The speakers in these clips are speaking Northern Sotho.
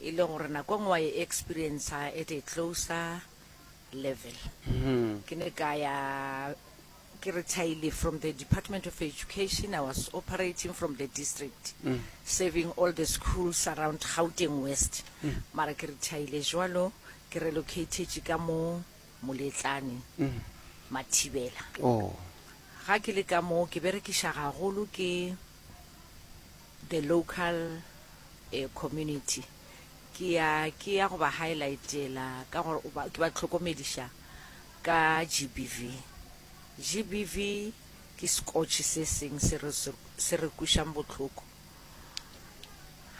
E le gore nako engwe wa e experienca at a closer level. Ke ne ka ya, ke retirile from the Department of Education, I was operating from the district, serving all the schools around Gauteng West. Mara ke retirile jwalo, ke relocatetše ka mo Moletlane, Mathibela. Ga ke le ka mo, ke berekiša gagolo ke, The local community ke ya ke ya go ba highlightela ka gore o ba ke ba tlhokomediša ka GBV. GBV ke sekotšhe se seng se re se re kwišang bohloko.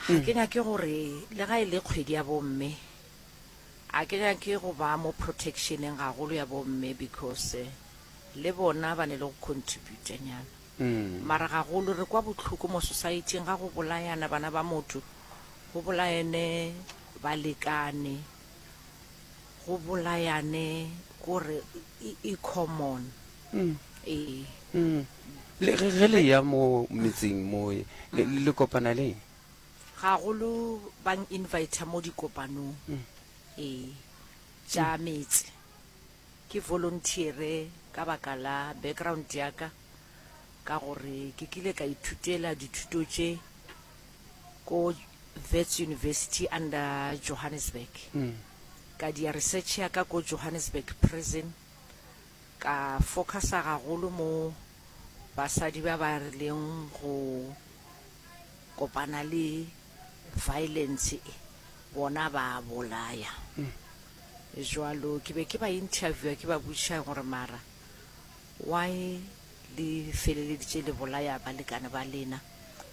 Ga ke nyake gore le ga e le kgwedi ya bomme a ke nyake go ba mo protectioneng gagolo ya bomme because le bona ba ne le go contributa nyana. Mara gagolo re kwa bohloko mo society-ing ga go bolayana bana ba motho, go bolayane balekane, go bolayane kore e common. Le ge le ya mo metseng mo le kopana leng? Gagolo bang inviter mo dikopanong tša metse. Ke volunteere ka baka la background ya ka, ka gore ke kile ka ithutela dithuto tše ko Wits University under Johannesburg, ka dia research ya ka ko Johannesburg Prison, ka focusa gagolo mo basadi ba ba rileng go kopana le violence e, bona ba bolaya. Jwalo ke be ke ba interviewer ke ba botšiša gore mara why le feleleditše le bolaya balekane ba lena.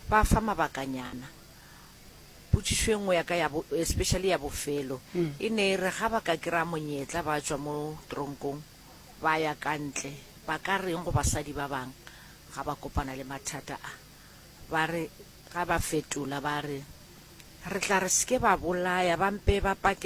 Ba fa mabakanyana. Potšišo e nngwe ya ka ya bo, especially ya bofelo, e ne e re ga ba ka kry-a monyetla ba tšwa mo tronkong ba ya ka ntle, ba ka reng go basadi ba bang ga ba kopana le mathata a? Ba re, ga ba fetola ba re, re tla re se ke ba bolaya, ba mpe ba pake